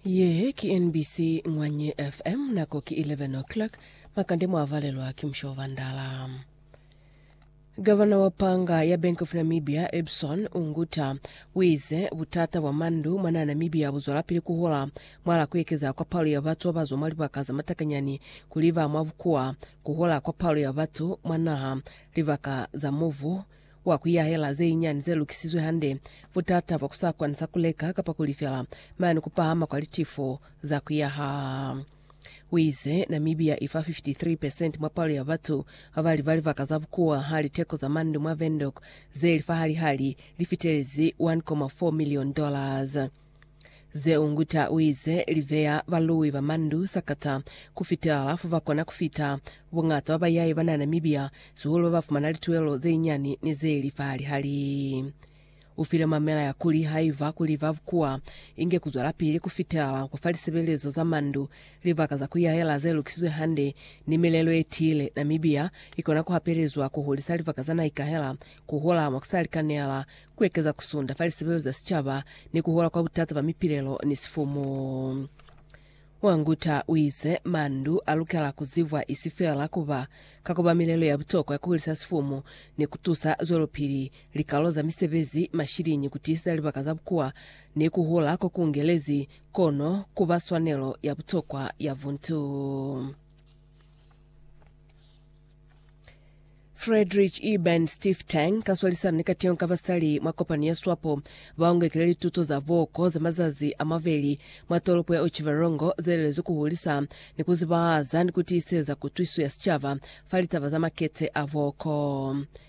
Ye ki NBC Ngwanye FM, nako ki 11 o'clock, makande mwa valelwa ki musho wa bandala. Gavana wa panga ya Bank of Namibia Ebson Unguta wize butata bwa mandu mwa naha Namibia buzwalapili kuhula mwala kuekeza kwa palo ya batu babazwa mwa libaka za matakanyani kuli ba mwa bukuwa, kuhula kwa palo ya batu mwa naha, libaka za muvu, Kwa ku yahela ze nyinyani ze lukisizwe hande, butata bwa ku sa kwani sa ku leka kapa ku lifela, mane ku pahama kwa litifo za ku yaha. U ize, Namibia i fa 53 percent mwa palo ya batu ba ba li ba libaka za bukuwa ha liteko za mandu mwa Windhoek ze li fahali-hali li fitelezi 1.4 million dollars. Zeunguta uize, Liveya balui ba mandu sakata kufitela fo bakona kufita. Bungata ba bayai banana mibiya, sihulu babafumana lituelo zeinyani ni zeili fa lihali. Ufile mamela ya kuli haiba kuli ba bukuwa, inge kuzwelapili kufitela kwa fa lisebelezo za mandu, libaka za kuyahela zelukisizwe hande, ni milelo yetiile. Namibia ikona kuhapelezwa kuhulisa libaka za naikahela, kuhula mwakusalikanela, ku ekeza ku sunda fa lisebelo za sicaba ni ku hola kwa butata ba mipilelo ni sifumu. Wanguta u ize, Mandu a lukela ku zibwa isi fela ku ba ka kobamilelo ya butokwa ya ku hulisa sifumu ni ku tusa zwelopili likalo za misebezi, mashiliñi, ku tiiseza libaka za bukuwa ni ku hula ko ku ungelezi, kono ku ba swanelo ya butokwa ya buntu. Friedrich Eben Stiftung, ka swalisano ni kateho ka basali mwa kopano ya swapo, ba ungekile lituto za boko za mazazi a mabeli mwa tolopo ya Otjiwarongo ze lelezwi ku hulisa ni ku zibahaza ni ku tiiseza kutwiso ya sicaba fa litaba za makete a boko.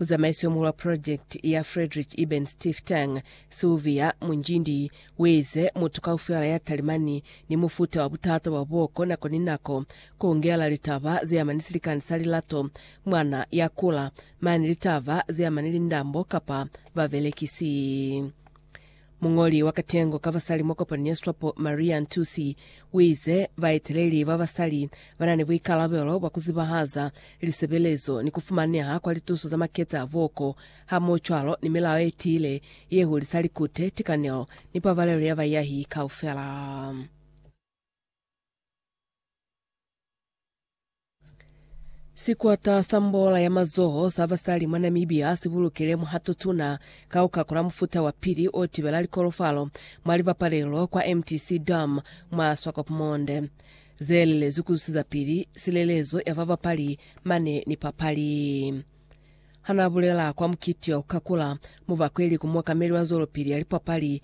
Muzamaisi omuhulu wa purojekiti ya Frederick Eben Stiftung, Sylvia Munjindi, uize, Mutu kaufela ya talimani ni mufuta wa butata bwa boko nako ni nako, kuhungela litaba zeama ni silikani sa lilato, mwana ya kula, mane litaba zeama ni lindambo kapa babelekisi. Muñoli wa katengo ka basali mwa kopani ya swapo Maria Ntusi uize baeteleli ba basali banani buikalabelo bwa kuzibahaza lisebelezo ni kufumaneha kwa lituso za maketa a buoko hamohocwalo ni milao yetiile ye hulisa likute, tikanelo ni pabalelo ya bayahi kaufela. Sikwata sa mbola ya mazoho sa basali mwa Namibia si bulukile muhato tuna ka ku kakula mufuta wa pili o tibela likolofalo mwa libapalelo kwa MTC Dam mwa Swakopmund, ze lelezwi ku zusiza pili silelezo ya babapali mane ni papali. Ha n'a bulela kwa mukiti wa ku kakula, mubakweli ku muokameli wa zwelopili ya lipapali,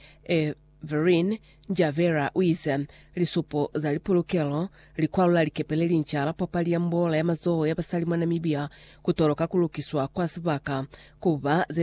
Vereen Njavera u ize, Lisupo za lipulukelo, likwalo la likepe le linca la papali ya mbola ya mazoho ya basali mwa Namibia ku toloka ku lukiswa kwa sibaka ku ba ze